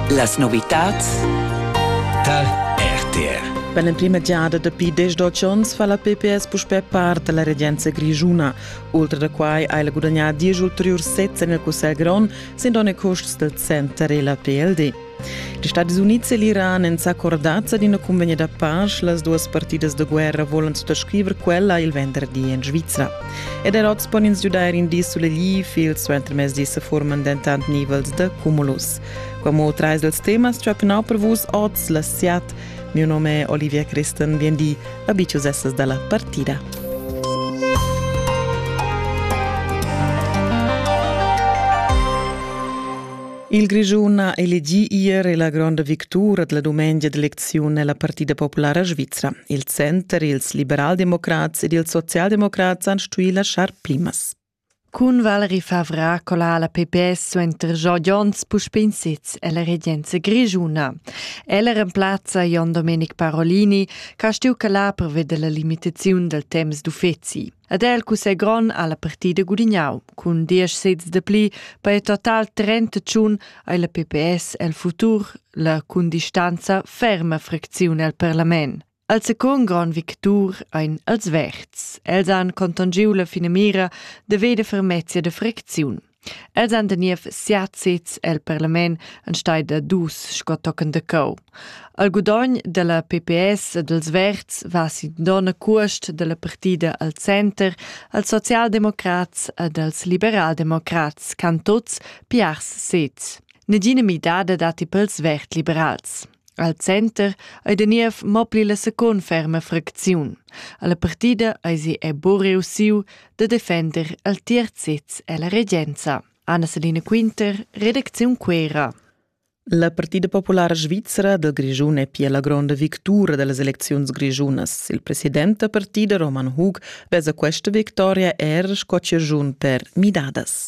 Las novitads tal RTR Per l'emprima giada dapi desdoc onns fa la PPS puspè part da la regenza grischuna. Ultra da quai ha ella gudagnà diesch ulteriurs sezs en il Cussegl grond, sin donn e custs del center e la PLD. Gli Stati Uniti e l'Iran èn s'accordats ad ina cunvegna da pace. Las duas partidas da guerra volan suttascriver quella il venderdi en Svizra. Ed er oz pon ins giudair in di sulegliv, il suentermezdi se forman dentant nivels de cumulus. Como trais dels temas ciapenau per vus oz la siat. Mio nome è Olivia Kristen, vien di, abicius essas dalla partida. Il Grischun ha elegì ier la gronda victura della dumengia d'elecziun nella Partida Populara Svizra. Il center, ils liberaldemocrats ed ils socialdemocrats han stuì laschar plimas. Cun Valerie Favra cola la PPS suenter Job Jons puspè in sez ella regenza grischuna. Ella remplazza Jon Domenic Parolini, che ha stuì calar pervia della limitaziun del temps d'uffizi. Ed el cussegl grond ha la partida gudignau cun diesch sezs de pli per il total trentacun ei la PPS el futur la cun distanza ferma fracziun el parlament. Al secund grand victur ein els verds. Els han contongiu la finamira de veder fermezia de fracziun. Els han da niev siat sezs el parlament en stai da dus sco tochen de cau. Al gudogn della PPS e dels Verds va sin donna cuost della partida al center, als socialdemocrats ed als liberaldemocrats can tots piars sez. Negina midada dati pels verd-liberals. Al center ei da niev mo pli la secund ferma fracziun. Alla partida eisi buca reussiu da defender al tier sez ella regenza. Anna-Selina Quinter, redacziun Quera. La Partida Populara Svizra del Grigiun è pia la gronda victura dellas elecziuns grigiunas. Il president da partida Roman Hug vesa questa victoria er sco ciagiun per midadas.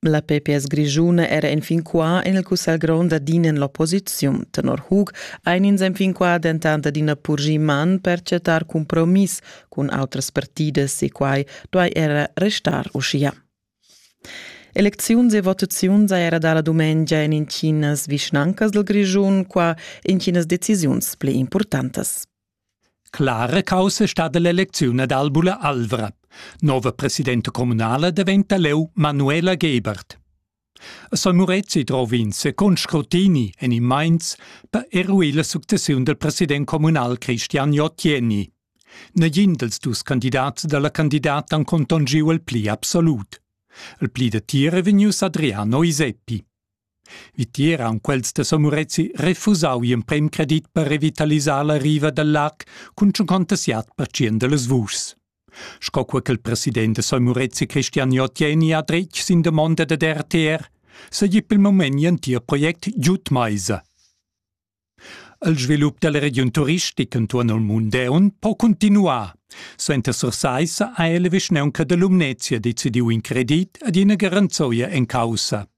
La PPS grischuna era enfin qua en il cussegl grond adina en l'opposiziun. Tenor Hug ein ins enfin qua dentant adina purgi man per chattar compromiss cun outras partidas e quai duai era restar uschia. Elecziuns e votaziuns era da la dumengia en intginas vischnancas del Grischun, qua intginas decisiuns pli importantas. Clara caussa stat l'elecziun ad Albula Alvra. Nova presidenta communala diventa leu Manuela Gebert. A San Murezi drov ins con scrutini en in Mainz per eruir la successiun del president communal Christian Jottieni. Negin dels dus candidats dalla candidata han contongiu il pli absolut. Il pli de tira vegnius Adriano Iseppi. Vitier haun quels da Somorezi refusau gl'emprem credit per revitalisar la riva dal lag cun tschunconta siat pertschient da las vuschs. Sco co ch'el president da Somorezi Christian Jotieni ha dretg sin damonda dad RTR, seigi pel moment gl'entir project giud maisa. Il svilup dalla regiun turistica entuorn il mund deun po cuntinuar. Suenter Sursaissa ha la vischnaunca da Lumnezia decidiu in credit ad ina garanzoia en caussa.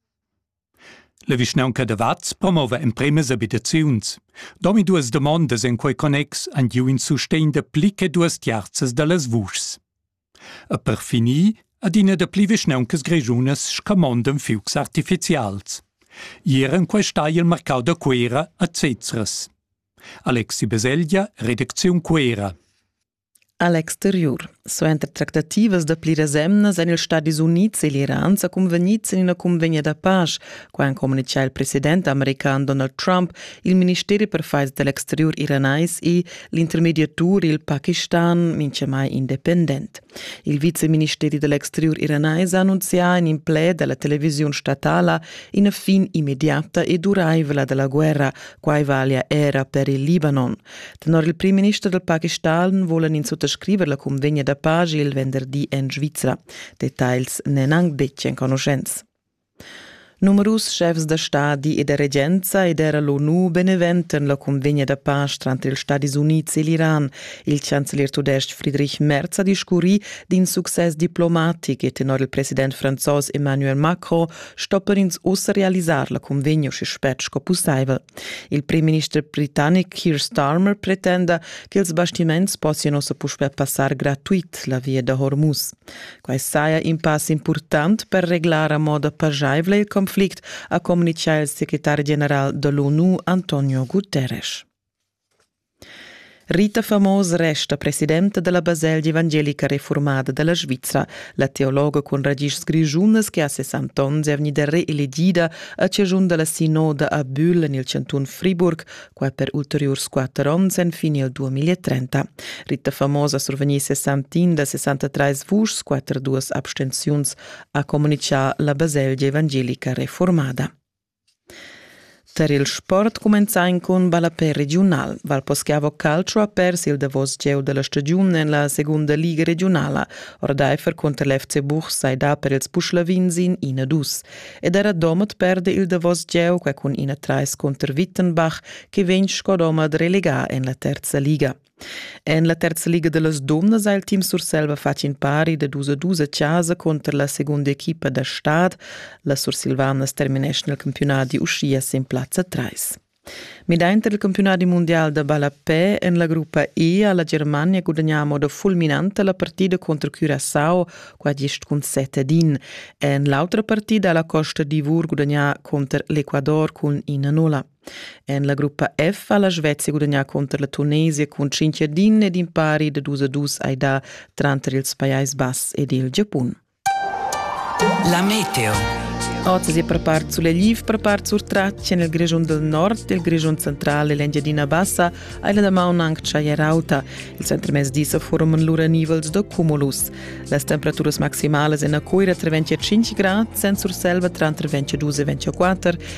La vischnaunca da Vaz promova empremas abitaziuns. Domi duas domondas en quei connex han giu in sustegn da pli che duas tiarzas dallas vuschs. E per finir adina dapli vischnauncas grischunas scamondan fiugs artificials. Ier en quest hai il marcau da Cuera a Zezras. Alexi Beselja, Redacziun Cuera. A l'exteriur. Suenter tractativas da pliras emnas èn ils Stadis Unids e l'Iran sa cunvegnids en ina cunvegna da pasch Qua han communitgà il president american Donald Trump, il ministeri per faids da l'exteriur iranais e l'intermediatur il Pakistan mintgamai independent. Il viceministeri dell'exterior iranais ha annunzià in implè dalla televisiun statala ina fin immediata e duraivla della guerra, quai valia era per il Libanon. Tenor il primminister del Pakistan volen ins suttascriver la convegna da pace il venderdi en Svizzera. Details n'en anc betg enconuschents. Numerus schefs da stadi e da regenza ed era l'ONU beneventan la cunvegna da pace tranter ils Stadis Unids e l'Iran. Il chancelier tudestg Friedrich Merz ha discurrì d'in success diplomatic e tenor il president franzos Emmanuel Macron stoppan ins ussa realisar la cunvegna uschè spert sco pussaivel. Il premierminister britannic Keir Starmer pretenda che ils bastiments possian ussa puspè passar gratuit la via da Hormuz. Quai saja in pass impurtant per reglar a moda pajaivla il conflict, ha communitgà il secretar general de l'ONU Antonio Guterres. Rita Famos resta presidenta della Baselgia evangelica reformada della Svizzera, la teologa con radici grigiunas che a 60 onns è vegnida reelegida a cigiun della sinoda a Bühl nel canton Friburg quatter ulteriurs quatter onns enfin il 2030. Ritta Famosa survegnì 61 da 63 vuschs, quatter duas abstenziuns, ha comunichà la baselgia evangelica reformada. Per il sport cumenzai cun ballapè regiunal. Valposchiavo Calcio ha perso il davos gieu della stagiun en la segunda liga regionala. Ordeifer contro l'FC Buch sai da per ils Puschlavins in 1-2. ed era Domat perde il davos gieu qua cun ina trais contr Wittenbach che vegn sco Domat relegà en la terza liga. En la terza liga de las Dumnas ha il team Surselva fatg in pari de dus a dus a casa contro la seconda equipa da stad, la Sursilvanas termineschna il campionat di uschia sin plazza 3. Midainter il campiunadi mundial da ballapè en la gruppa E ha la Germania gudagnà a moda fulminanta la partida contro Curaçao qua gist cun set ad in. En l'autra partida ha la Costa d'Ivor gudagnà contro l'Ecuador cun ina nulla. En la gruppa F ha la Svezia gudagnà contro la Tunesia cun 5 ad in ed impari da 2 a 2 ai dà tranter ils Pajais Bass ed il Giapun. La meteo. Oz è prepart sulegliv, prepart surtratg en il Grischun del Nord, il Grischun central e l'Engiadina Bassa hai la damaun anc tschaglia rauta. Il centrmezdi sa forman lura nivels da cumulus. Las temperaturas maximalas en a Coira tra 25 grad, Sen Surselva tranter 22 e 24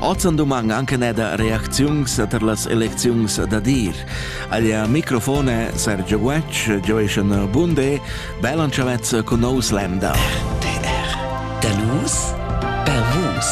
Oz en dumang anche neda reacziuns tar las elecziuns da dir. Aglia microfone Sergio Guetg, Joeschen Bunde, Belan Chavez con nos Länder. RTR. Da nus, per vus.